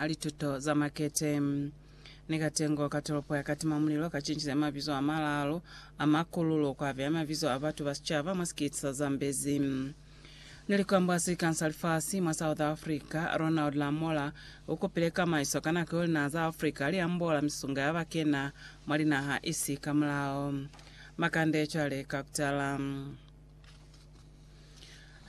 a lituto za makete. Ni katengo ka tolopo ya Katimamulilo kacincize mabizo amalaalu a makululo kuabeya mabizo a batu ba sicaba mwa sikiti sa Zambezi. Ni likambwa sikani sa lifasi mwa South Africa, Ronald Lamola ukupile kamaiso ka nako yeo linaha za Africa liambola misunga ya bakena mwa linaha isi kamulao. Makande cwale ka kutala.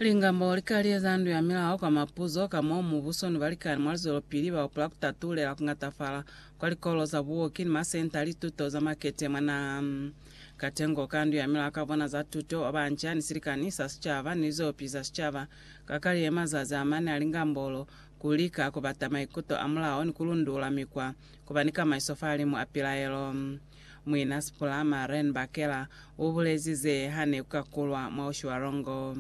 Lingambo li ka lieza ndu ya milao kwa mapuzo ka mo mubuso ni balikani mwa lizwelopili ba hupula ku tatulela ku ñatafala kwa likolo za buoki ni masenta a lituto za makete mwa naha. Katengo ka ndu ya milao ka bona za tuto wa banca ni silikani sa sicaba ni lizwelopili za sicaba ka ka liye mazazi a mane a lingambo lo ku lika ku bata maikuto a mulao ni ku lundula mikwa ku ba ni kamaiso fa limu a pilaelo. Muina Sipula Maren Bakela u bulezi ze ha ne ku ka kulwa mwa Oshiwarongo.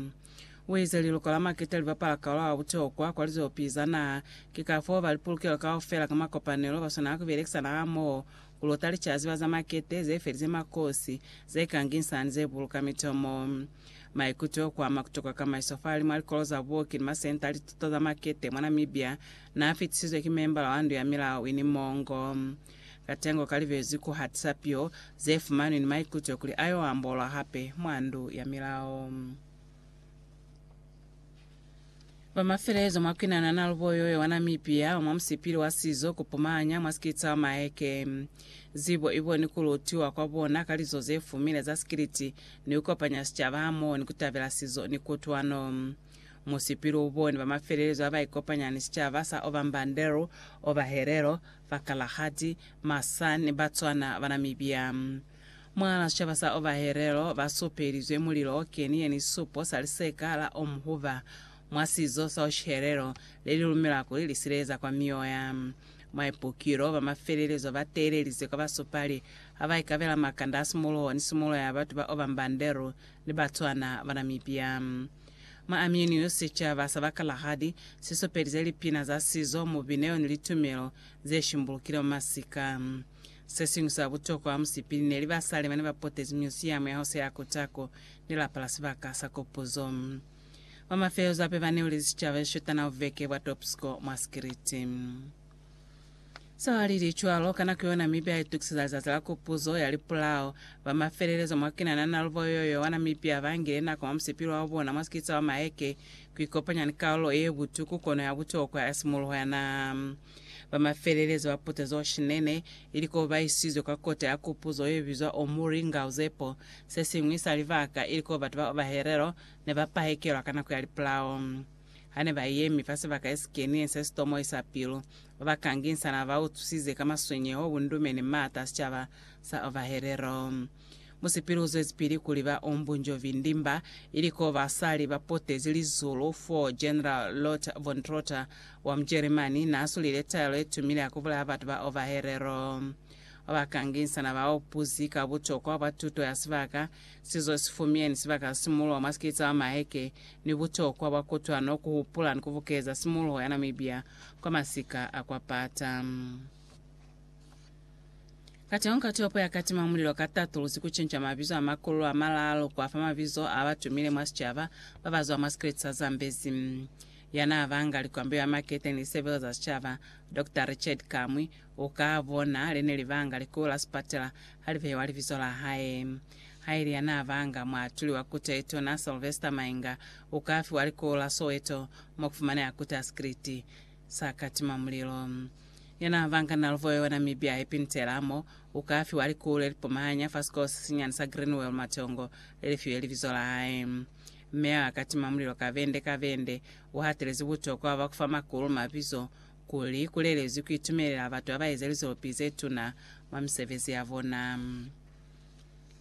U ize liluko la maketa li bapala kaula wa butokwa kwa lizopi za naha, ki ka foo ba lipulukelo kaufela ka makopanelo ba swanela ku belekisana hamoho ku luta licazi ba za makete ze felize makosi, ze kanginsa ni ze buluka mitomo. Maikuto o ku ama ku tokwa kamaiso fahali mwa likolo za buoki ni masenta a lituto za makete mwa Namibia n'a fitisizwe ki membala wa Ndu ya Milao Winnie Mongo. Katengo kalibezwi ku hatisa piyo zefumanwi ni maikuto kuli ayo ambolwa hape mwa Ndu ya Milao. Ba mafelezo mwa kwinana na lubo yoyo wa Namibia wa mwa musipili wa sizo ku pumanya mwa sikiliti sa Maeke. Zibo ibo ni ku lutiwa kwa bona ka lizo ze fumile za sikiliti ni ku kopanya sicaba hamoho ni ku tabela sizo ni kutwano. Musipili u boni ba mafelezo ha ba ikopanya ni sicaba sa Ovambanderu, Ovaherero, Bakalahati, Masan, Batswana, Banamibia. Mwa sicaba sa Ovaherero ba supelizwe mulilo o keni ye ni supo sa liseka la Omhuva. Mwa sizo sa Oshiherero, le li lumela kuli li sileleza kwa mioya. Mwa ipukilo, ba mafelelezo ba teelelize kwa basupali ha ba ikabela makanda a simuluho ni simulo ya batu ba Ovambanderu ni Batswana, Banamibia. Mwa Amyuniyo, sicaba sa ba Kalahadi si supelize lipina za sizo, mubineo ni litumelo ze shimbulukile mwa masika. Se siñwi sa butokwa mwa musipili ne li basali bane ba potezi myusiyamu ya Hose ya Kotako ni lapa la sibaka sa kopuzo. Mwa mafelezo ape ba neulezi sicaba ze shotana buveke bwa Topsko mwa sikiliti. Sewalilichwalo, ka nako yona Mipya itukiseza Lizazi la Kupuzo ya Lipulao. Ba mafelelezo mwa Kenana na lubo yo yowana Mipya bangile nako mwa musipilo wa bona mwa sikitsa wa maheke kuikopanya ni kalulo yebutuku kono ya butokwa ya simuluho ya naha. Ba mafelelezo ba putezo shinene, ili ko ba isizwe kwa kota ya kupuzo ye bizwa Omuri Ngauzepo, sesiñwi sa libaka ili ko batu ba Obaherero ne ba pahekelwa ka nako ya lipulao. Hane ba yemi fa sibaka yesikenile se sitomoi sa pilu, ba ba kanginsa naba ba utwisize ka maswenyeho, bundume, ni maata a sicaba sa Ovaherero. Musipili uzwezipili kuli ba Om Bunjovi Ndimba, ili ko basali ba potezi lizulu fo General Lothar von Trotha wa Mujeremani na sulile taelo ye tumile ya ku bulaya batu ba Ovaherero. Ba ba kanginsa naba upuzi ka butokwa bwa tuto ya sibaka Sizo si fumyeni sibaka sa simuloho mwa sikete sa maheke ni butokwa bwa kutwano ku hupula ni ku bukeza simuloho ya Namibia kwa masika a kwa pata. Kateho ka topo ya katima mulilo ka tatuluzi ku cinca mabizo a makulu a malaalu kwa fa mabizo a ba tumile mwa sicaba ba ba zwa mwa sikete sa Zambezi. Ya naa banga likwambeyo ya makete ni lisebelo za sicaba, Doctor Richard Kamwi, u ka bona le ne li banga likubu la sipatela Halibewa libizo la hae. Haili yanaabanga muatuli wa Kute Yetuna Sylvester Mainga ukafiwa likulu la Soweto mokufumaneha Kute Asikiliti sa katima mulilo. Yanaabanga Naluvo yo Namibia Happy Ntela mo ukafiwa likulu lelipumahanya fa sikolo sesinyani sa Greenwell Matongo lelifiwe libizo la hae. Meya wa katima mulilo Kavende Kavende uhatelezi butokwa bwa kufa makulu mabizo kuli ku lelezwi ku itumelela batu ba ba eza lizopi ze tuna mwa misebezi ya bona.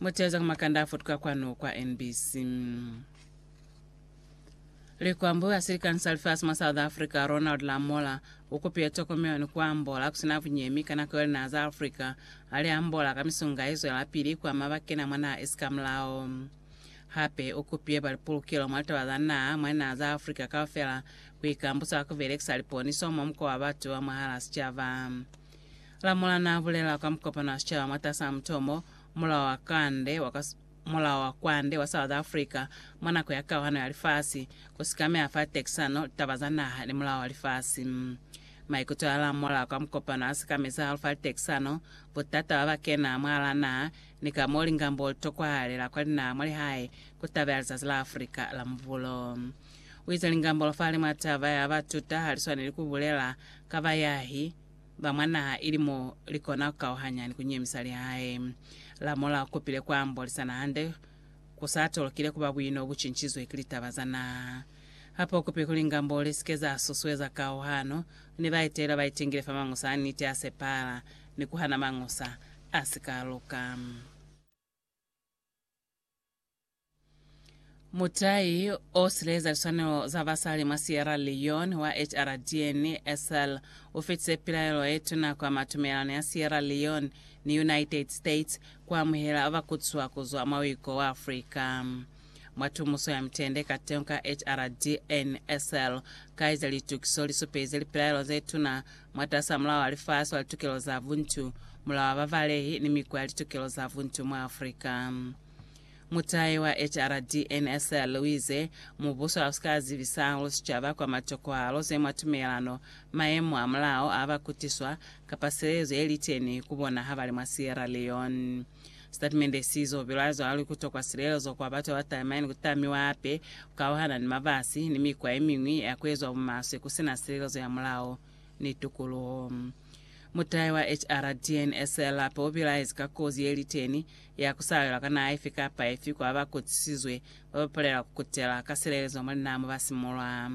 Muteza ku makanda a futuka kwanu kwa NBC. Likwambo ya silikani sa lifasi mwa South Africa Ronald Lamola u kupile tokomelo ni ku ambola ku si na bunyemi ka nako yeo linaha za Africa ha li ambola ka misunga ye zwelapili ku ama ba kena mwa naha esi ka mulao. Hape u kupile ba lipulukelo mwa litaba za naha mwa linaha za Africa kaufela ku ikambusa ka ku belekisa liponiso mwa muko wa batu ba mwahal'a sicaba. Lamula n'a bulela kwa mukopano wa sicaba mwatas'a mutomo Mulao wa Kwande wa kwa Mulao wa Kwande wa South Africa mwa nako ya kauhano ya lifasi, ku sikameha fa tekisano, litaba za naha ni mulao wa lifasi. Maikuto a lamula kwa mukopano a sikamezi hahulu fa litekisano, butata ba ba kena mwahal'a naha, ni ka m'o lingambo li tokwahalela kwa linaha mwa lihae ku tabela Lizazi la Afrika la Mubulo. U eza lingambolo fale mwa taba ya ba tuta ha li swaneli ku bulela ka bayahi ba mwa naha ili mo li kona ku kauhanya ni ku nyemisa lihae. La mola u kopile ku ambolisana hande ku sa tolokile ku ba buino bu cincizwe ki litaba za naha. Hape u kope kuli ngambolo li si ke za susueza kauhano ni baetelwa ba itingile fa mañusa a niti a sepahala ni ku hana mañusa a si ka luka. Mutai o silaeza liswanelo za basali mwa Sierra Leone wa HRDN, Essel, u fetise pilaelo ye tuna kwa mwa tumelelano ya Sierra Leone ni United States ku amuhela ba ba kutiswa ku zwa mwa uiko wa Afrika. Mwa tumuso ya mitende kateñi ka HRDN, Essel ka eza litukiso li supelize lipilaelo ze tuna Mwatas'a Mulao wa Lifasi wa Litokelo za Buntu, Mulao wa Babalehi ni Mikwa ya Litokelo za Buntu mwa Afrika. Mutai wa HRDNSL uize, Mubuso hausik'a zibisa hahulu sicaba kwa matokohalo ze mwa tumelano, mayemo a mulao a ba kutiswa, kapa silezo yeliteni ku bona habali mwa Sierra Leone. Sitatimende si zo bilwa zwali ku tokwa silelezo kwa batu ba talima ni ku tamiwa hape ku kauhana ni mabasi ni mikwa ye miñwi ya ku ezwa bumaswe ku si na silelezo ya mulao ni tukuluho. Mutahe wa HRDNSL hape u bilaezi ka kozi ye li teni ya ku salelwa ka naha ifi kapa ifi kwa ba kotisizwe ba ba palela ku kutela ka silelezo mwa linaha mo ba si mulwa.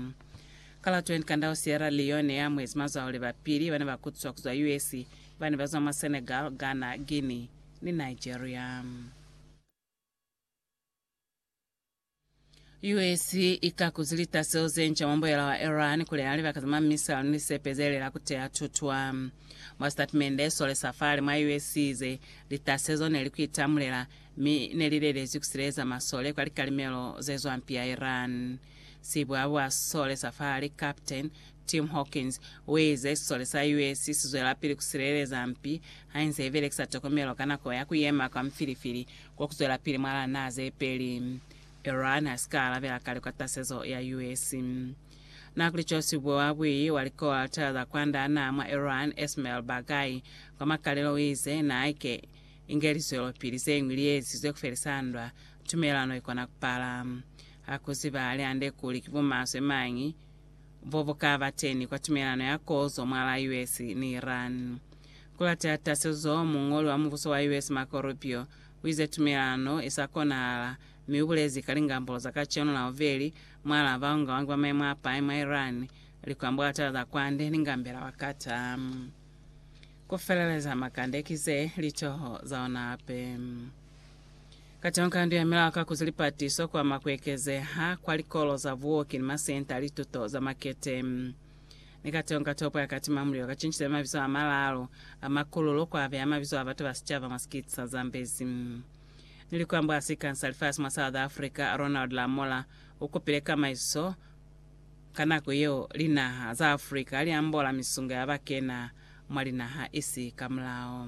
Ka la 20 Kandau Sierra Leone ye amuhezi mazwauli ba pili ba ne ba kutiswa ku zwa US Bana ba zwa mwa Senegal, Ghana, Guinea ni Nigeria. US i kakuzi litaselo ze nca mwa mbuyela wa Iran kuli na libaka za mwa misile ni lisepe ze lela kuteya tutwa. Mwa sitatimende so le sa fale mwa US i ize, Litaselo zo ne li ku itamulela, mi ne li lelezwi ku sileleza masole kwa likalimelo ze zwampi ya Iran. Sibwabwa so le sa fale, Captain, Tim Hawkins uize, Sisole sa US sizwelapili kusileleza mpi hainze ibelekisa tokomelo ka nako ya kuyema kwa mfilifili kokuzwelapili mwa lana zepeli. Iran hasika alabela ka likwatasezo ya US. Na kuli cosi ubo wa bui wa likola tala za kwanda naa mwa Iran, Esmail Baghaei, kwa makalelo uize, Na haike inge lizwelopili zeñwi liezizwe kufelisa ndwa, tumelano ikona kupala. Hakuziba hali hande kuli ki bumaswe mañi bo bu ka ba teni kwa tumelano ya kozo mwa la US ni Iran. Ku lateha tasezo, muñoli wa mubuso wa US Marco Rubio u ize tumelano i sa konahala, mi u bulezi ka lingambolo za kacenu la bubeli mwa la baungaungi ba maimo a pai mwa Iran, likwambulatela za kwande ni ngambela wa Qatar. Ku feleleza makande ki ze litoho za ona hape. Katonga ndu ya milao ka kuzi lipatiso ku ama ku ekezeha kwa likolo za buoki ni masenta a lituto za makete. Ni Katonga topo ya katima mulilo ka cincile mabizo a malaalu a makululo ku abeya mabizo a batu ba sicaba mwa sikiti sa Zambezi. Ni likwambo a sikan sa lifasi mwa South Africa, Ronald Lamola u kupile kamaiso ka nako yeo linaha za Africa ha li ambola misungo ya ba kena mwa linaha isi ka mulao.